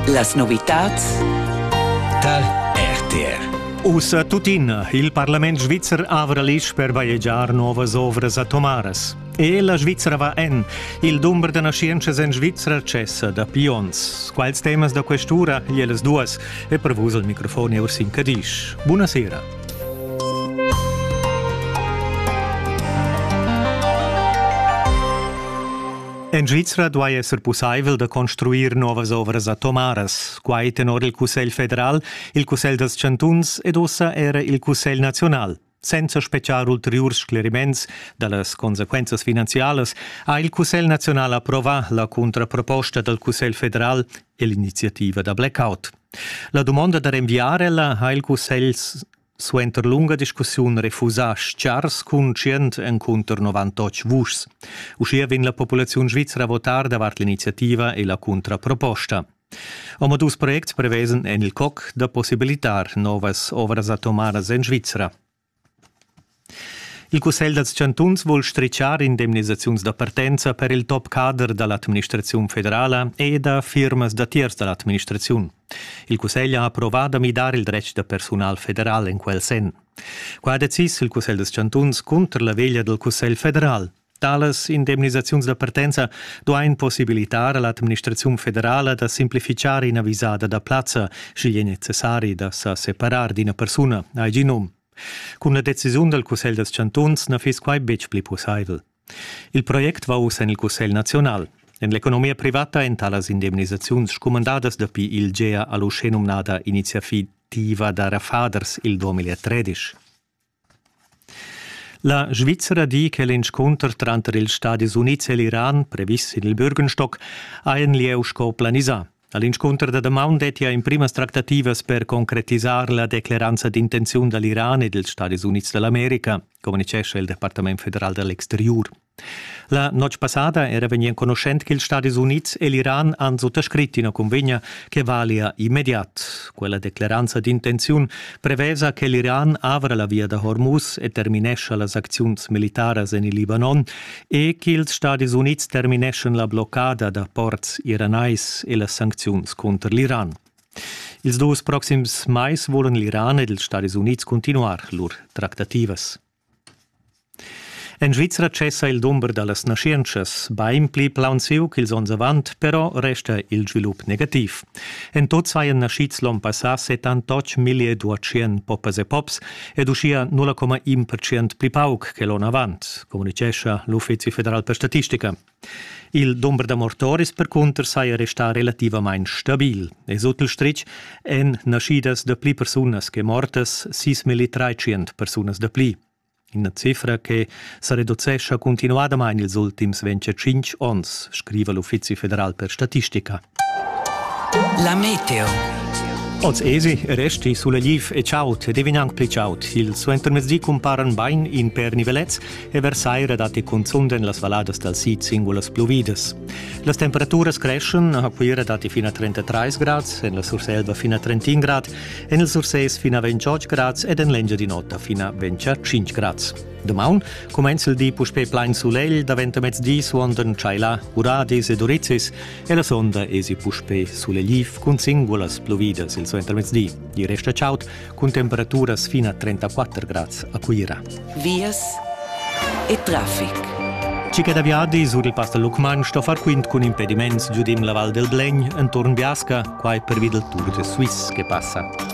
Las novitads dal RTR Ussa tuttina il parlament svizzer avra l'isch per bajegiar novas ovras atomaras. E la Svizzera va en. Il dumber da nascientschas en Svizzera cessa dapi onns. Quals temas da quest'ura e las duas è pervus al microfon Ursin Cadisch. Buonasera. En Svizra duai esser pussaivel da construir novas ovras atomaras, quai tenor il Cussegl federal, il Cussegl dals chantuns ed ussa era il Cussegl naziunal. Senza spetgar ulteriurs scleriments da las consequenzas finanzialas ha il Cussegl naziunal approvà la contraproposta dal Cussegl federal e l'iniziativa da blackout. La dumonda da rinviar ella ha il Cussegl Suenter lunga discussiun refusa schars conscient encunter 98 vuschs. Uschia vegn la populaziun svizra a votar davart l'iniziativa e la contraproposta. Omadus projects prevesen en il coc da possibilitar novas ovras atomaras en Svizra. Il cussegl dals chantuns vul stritschar indemnisaziuns da partenza per il top cader da l'administraziun federala e da firmas datiers da l'administraziun. Il cussegl ha approvà da midar il dretg da persunal federal en quel senn. Qua ha decis il cussegl dals chantuns cunter la veglia dal cussegl federal. Talas indemnisaziuns da partenza duain possibilitar a l'administraziun federala da simplificar ina visada da plazza, sch'igl è necessari da sa separar d'ina persuna, ha il genum. Cun la decisiun dal Cussegl dals chantuns na fiss quai betg pli pussaivel. Il project va uss en il Cussegl naziunal. En l'economia privata èn talas indemnisaziuns scumandadas dapi il Gea a l'uschenumnada iniziativa da Rafaders il 2013. La Svizzera di che l'inscunter tranter ils Stadis Unids e l'Iran, previs sin il Bürgenstock, ha in lieu sco planisà. All'inscunter da damaun dettia emprimas tractativas per concretisar la decleranza d'intenziun da l'Iran e dels Stadis Unids dall'America, communicescha il Departament federal dall'exteriur. La notg passada era vegni enconuschent che ils Stadis Unids e l'Iran han suttascrit ina convegna che valia immediat. Quella decleranza d'intenziun prevesa che l'Iran avra la via da Hormuz e terminescha las acziuns militaras en il Libanon e ch'ils Stadis Unids termineschan la bloccada da ports iranais e las sancziuns cunter l'Iran. Ils dus proxims mais volan l'Iran ed ils Stadis Unids cuntinuar lur tractativas. En Svizra cessa il dumber da las naschientschas, bain pli plaunsiu ch'ils onns avant, però resta il svilup negativ. En tot sajan naschids l'on passà 78 millier duatschien poppas e pops ed uschia 0,1 percent pli pauc che l'onn avant, communitgescha l'Uffizi federal per statistica. Il dumber da mortoris percunter saja restà relativamain stabil e sut il stritg èn naschidas da pli persunas che mortas, 6.300 persunas da pli. Ina cifra che sa reducescha cuntinuadamain ils ultims 25 onns, scriva l'Uffizi federal per statistica. La meteo. Oz esi, resti sulla liv e ciaut ed evinang pli ciaut. Il suentermezdi cumparan bain in per nivelets e versaira datti cunzun en las valladas dal sid singulas pluvidas. Las temperaturas creschen, a Cuira datti fino a 33 grad, en la Surselva fino a 31 grad, en il Sursès fino a 28 grad ed en l'Engiadin'Ota fino a 25 grad. Damaun cumenza'l di puspè plain sulegl, daventa mezdi suondan tschaila uradis ed urizis e la sonda esi puspè sulegliv cun singulas pluvidas il suentermezdi. I resta chaud cun temperaturas fin a 34 grads a Cuira. Vias e traffic. Cica da viadi sur il Pass da Lucmagn sto far quint cun impediments giudim la Val del Blegn entorn Biasca, quai per vid il Tour de Suisse che passa.